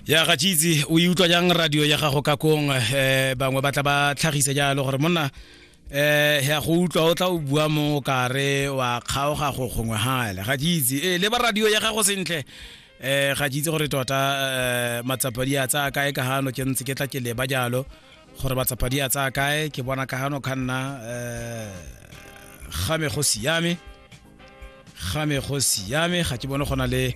ya ga tšitse o e utlwa jang radio ya gago ka kong um eh, bangwe ba tla ba tlhagise jalo gore monna eh ya go utlwa o tla o bua mo kare wa kgaoga go gongwe hale ga tšitse e eh, le ba radio ya gago sentle eh ga tšitse gore tota eh, matsapadi a tsaya kae ka gano ke ntse ke tla ke leba jalo gore matsapadi a tsaya kae ke bona ka gano ka nna um ga me go siame game go siame ga ke bone gona le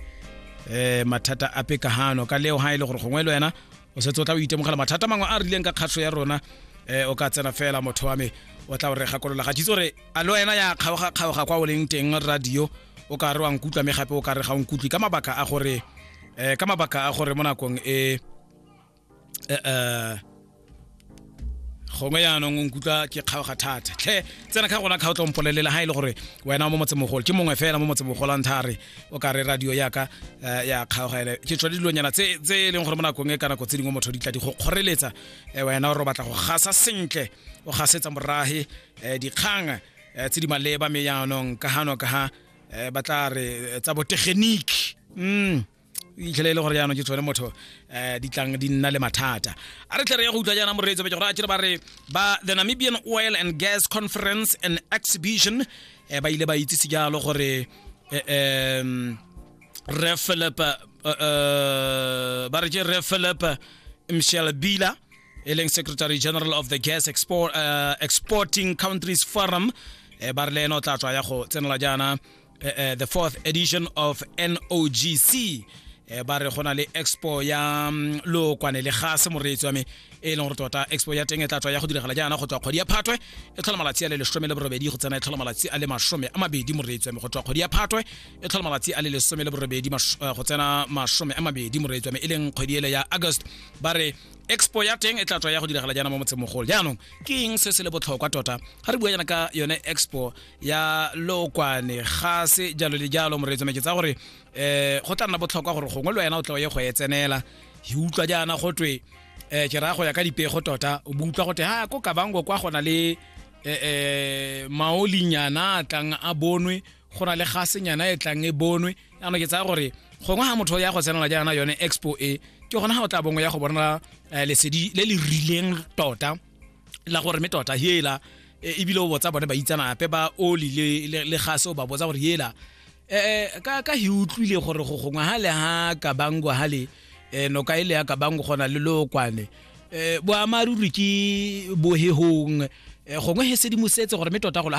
eh mathata a pekagano ka leo ha ile e gore gongwe le wena o setse o tla o itemogela mathata mangwe a rileng ka kgatlho ya rona eh o ka tsena fela motho wa me o tla o re gakolola ga tshitse gore a le wena ya kgaoga kgaoga kwa o leng teng radio o ka re wa nkutlwa me gape o ka re ga o nkutlwe ka mabaka a gore eh ka mabaka a gore mo nakong e eh, uh, gongwe yaanong o nkutlwa ke kgaoga thata tlhe tsena ka gona kgaotla mpolelela ga e le gore wena o mo motsemogolo ke mongwe fela mo motsemogolo a ntha a re o ka re radio yaka eh, ya kgaoga ele ke tswa dilonyana tse e leng gore mo nakong e ka nako tse dingwe motho di tla di go kgoreletsa eh, wena gore o batla go gasa sentle o gasetsa morage eh, dikgang tse di maleba me yaanong ka gano ka ga ba tla re tsa botegeniki mm itlhele e le gore jaanong ke tshwane motho um di tlang di nna le mathata a re tlhe re ya go utlwa jaana moreetso beke gore a kere ba re ba the namibian oil and gas conference and exhibition um ba ile ba itsise jalo gore um re philip ba re ke re philip michel bila e leng secretary general of the gas export, uh, exporting countries forum um ba re le ene o tla tswa ya go tsenela jaana eh, eh, the fourth edition of NOGC eh, ba re go na le expo ya mm, lookwane le gase moreetsi wa me e leng gore tota expo ya teng e tla tswa ya go diragala jaana go tswa kgwedi ya phatwe e tlhola malatsi a le lesome le borobedi go tsena e tlhola malatsi a le masome a mabedi moreetsi wa me go tswa kgwedi ya phatwe e tlhola malatsi a le lesome le borobedi eh, go tsena masome a mabedi moreetsi wa me e leng kgwedi ele ya august ba re expo ya teng e tla tswa ya go diragala jaana mo motsemogolo jaanong ke eng se se le botlhokwa tota ga re bua jaana ka yone expo ya lookwane ga se jalo le jalo moreetsone ke tsa gore um go tla nna botlhokwa gore gongwe le wena o tla o ye go e tsenela e utlwa jaana go twe um ke raya go ya ka dipego tota o bo utlwa go twe ha ko kabango kwa go na le um maolinyana a tlang a bonwe go na le gasenyana e tlang e bonwe jaanong ke tsaya gore gongwe ga motho ya go tsenela jaana yone expo e ke gona ga o tla bongwe ya go bona lesedi le le rileng tota la gore me tota hela e, ebile o botsa bone ba itsanape ba oli le, le, gase o ba botsa gore hela eh, ka, ka hi utlwile gore go gongwe ha le ha kabango ha le eh, noka e le ya kabango gona le lokwane eh, boamaruri ke bohehong eh, gongwe he sedimosetse gore me tota golo